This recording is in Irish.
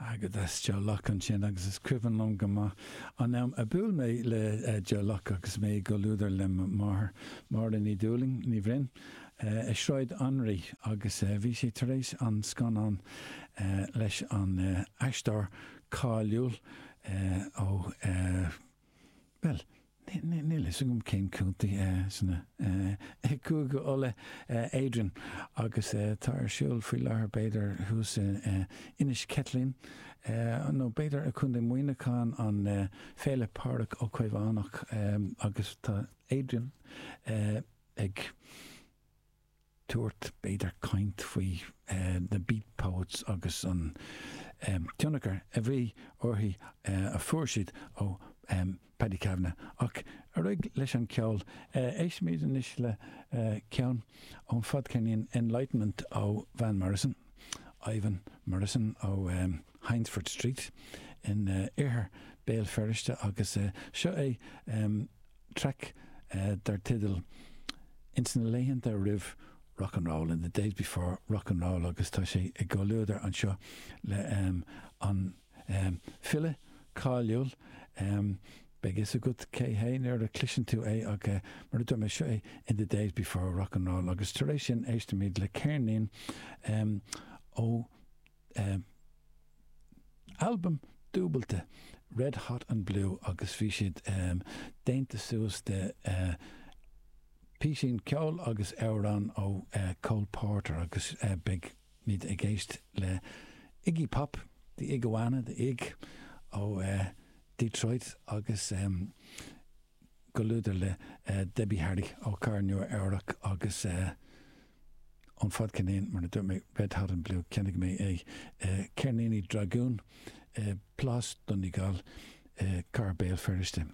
Agus that's Joe Locke ansin agus is cuimhin liom go maith an am a bhuail mé le Joe Locke agus mé i gcomhluadar le mo mháthair, Máire Ní Dhúlaing, Ní Bhroin, i Sráid Anraí agus bhí sé tar éis an scannán leis an aisteoir cáiliúil ó. Bhuel, níl a fhios agam cén contae sna Cúige Uladh, Adrian, agus tá ar siúl faoi láthair b'fhéidir thuas in Inis Ceithlín nó b'fhéidir i Contae Mhuineacháin an Féile Pádraig Ó Caomhánach agus tá Adrian ag tabhairt, b'fhéidir caint faoi The Beat Poets agus an tionchar a bhí orthu a fuair siad ó Paddy Kavanagh. Ach ar aghaidh leis an cheol. Éistfimid anois le ceann ón fadcheirnín Enlightenment ó Van Morrison, Ivan Morrison ó Hyndford Street in oirthear Béal Feirste agus seo é traic dar teideal Ins na laethanta roimh rock and roll, In the days before rock and roll agus tá sé i gcomhluadar anseo le an file cáiliúil Beidh a fhios agat cé hé nuair a chloiseann tú é ach mar a dúirt mé, seo é In the days before rock and roll agus tar éis sin éistimid le ceirnín ó albam dúbailte, Red Hot and Blue, agus bhí siad déanta suas de písín ceoil agus amhráin ó Cole Porter agus beidh muid ag éist le Iggy Pop, The Iguana, The Ig, ó Detroit agus. gcomhluadar le Debbie Harry ó Cathair Nua Eabhrac agus ón fadcheirnín, mar a dúirt mé, Red Hot and Blue, cheannaigh mé é, Ceirníní Dragún, Plás Donegall, Cathair Béal Feirste.